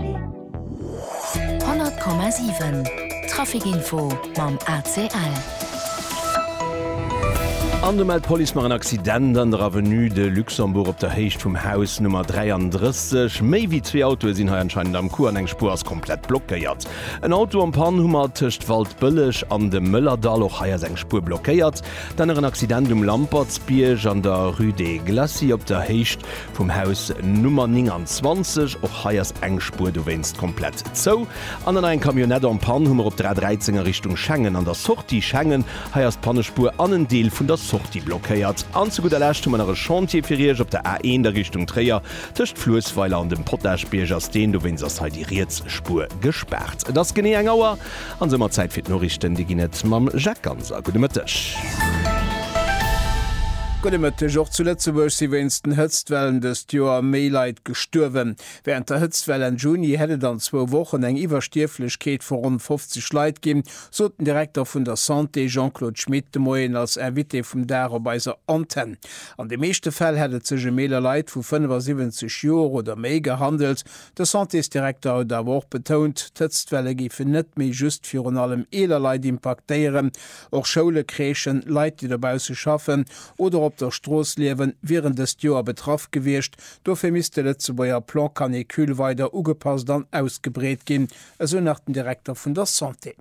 100,7 Trafic-Info mam ACL. An do mellt d'Police nach en Accident an der Avenue de Luxembourg op der Héicht vum Haus Nummer 33. Méi wéi zwee Autoe sinn hei anscheinend am Coup an eng Spuer ass komplett blockéiert. En Auto am Pann hu mer tëscht Waldbëlleg an dem Mëllerdall. Och hei ass eng Spuer blockéiert. Dann nach en Accident um Lampertsbierg an der Rue des Glacis op der Héicht Vum Haus Nummer 29, och hei ass eng Spuer dowéinst komplett zou. An dann nach eng Camionnette en panne hu mer op der A 13 a Richtung Schengen an der Sortie Schengen. Hei ass d'Pannespuer an en Deel vun der Sortie blockéiert. An zu gudder Lescht hu mer nach e Chantier fir Iech op der A 1 a Richtung Tréier. Tëscht Fluessweiler an dem Potagebierg ass deen, dowéinst ass hei déi riets Spuer gespaart. Et ass genee eng Auer An soumat Zäit fir d'Noriichten. Déi ginn et mam Jacques Ganser. Gudde Mëtteg. Gudde Mëtteg. Och zu Lëtzebuerg si wéinst den Hëtztwellen dëst Joer méi Leit gestuerwen. Wärend der Hëtztwell Enn Juni hätt et an zwou Wochen eng Iwwerstierflechkeet vu ronn 50 Leit ginn, sot den Direkter vun der Santé Jean-Claude Schmit de Moien als Invité vum Dag op eiser Antenn. An de meeschte Fäll hätt et sech ëm eeler Leit vu 75 Joer oder méi gehandelt, De Santésdirekter huet awer och betount, d'Hëtztwelle géifen net méi just virun allem eeler Leit impaktéieren. Och Schoule, Crèchen, Leit, déi dobausse schaffen oder op der Strooss liewen, wieren dëst Joer betraff gewiescht. Dofir misst de Lëtzebuerger Plan Canicule weider ugepasst an ausgebreet ginn, esou nach den Direkter vun der Santé.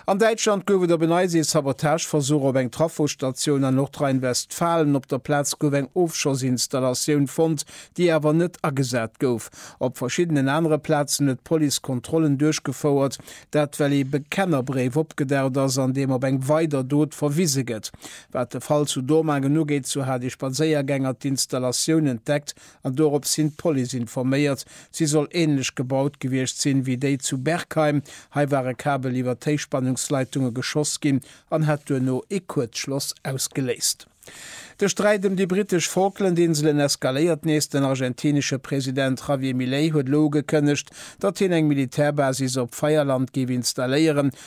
An Däitschland gouf et op en Eis ee Sabotageversuch op eng Trafostatioun an Nordrhein-Westfalen. Op der Plaz gouf eng Ofschossinstallatioun fonnt, déi awer net agesat gouf. Op verschiddenen anere Plazen huet d'Police Kontrollen duerchgefouert. Dat well ee Bekennerbréif opgedaucht ass, an deem op eng weider Dot verwise gëtt. Wat de Fall zu Dormagen ugeet, sou hat ee Spadséiergänger d'Installatioun entdeckt, an dorops hin d'Police informéiert. Si soll änlech gebaut gewiescht sinn, wéi déi zu Bergheim. Hei war e Kabel iwwert d'Héichspannungsleitunge geschoss ginn an hat duerno ee Kuerzschloss ausgeléist. De Sträit ëm déi brittesch Falklandinselen eskaléiert nees. Den argentinesche President Javier Milei huet elo ugekënnegt, datt hien eng Militärbasis op Feierland géif installéieren,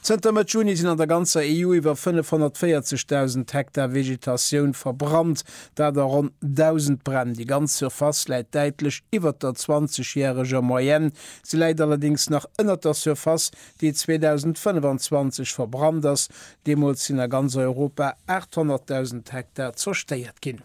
Zënter Mëtt Juni sinn an der ganzer EU iwwer 540.000 Hektar Vegetatioun verbrannt, dat a ronn 1.000 Bränn. Déi ganz Surface läit däitlech iwwert der 20 järeger Moyenne. Se läit allerdéngs nach ënnert der Surface, déi 2025 verbrannt ass. Deemools sinn a ganz Europa 800.000 Hektar zerstéiert ginn.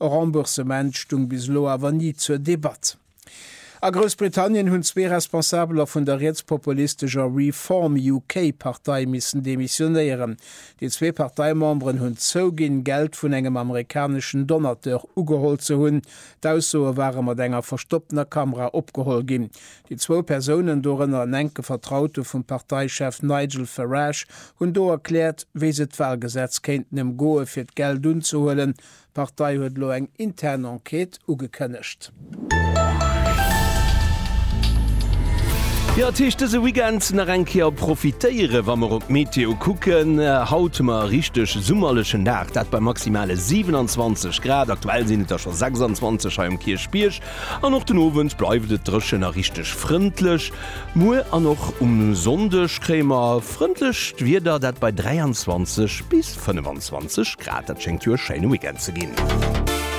E Remboursement stung bis elo awer ni zur Debatt. A Groussbritannien hunn zwee Responsabeler vun der rietspopulistescher Reform UK Partei missen demissionéieren. Déi zwee Parteimemberen hunn zouginn, Geld vun engem amerikaneschen Donateur ugeholl ze hunn. D'Aussoe ware mat enger verstopptener Kamera opgeholl ginn. Déi zwou Persounen, dorënner en enke Vertraute vum Parteichef Nigel Farage, hunn do erkläert, wéi se d'Walgesetz kéinten ëmgoe fir d'Geld unzehuelen, D'Partei huet elo eng intern Enquête ugekënnegt. Jo, et heescht dëse Weekend nach eng Kéier profitéieren, wa mer op d'Meteo kucken. Haut hu mer e richteg summerlechen Dag, dat bei maximale 27 Grad. Aktuell sinn et der scho 26 hei um Kierchbierg. An och den Owend bleift et dréchen a richteg frëndlech. Muer an och um Sonndeg kréie mer frëndlecht Wieder, dat bei 23 bis 25 Grad. Dat schéngt jo e schéine Weekend ze ginn.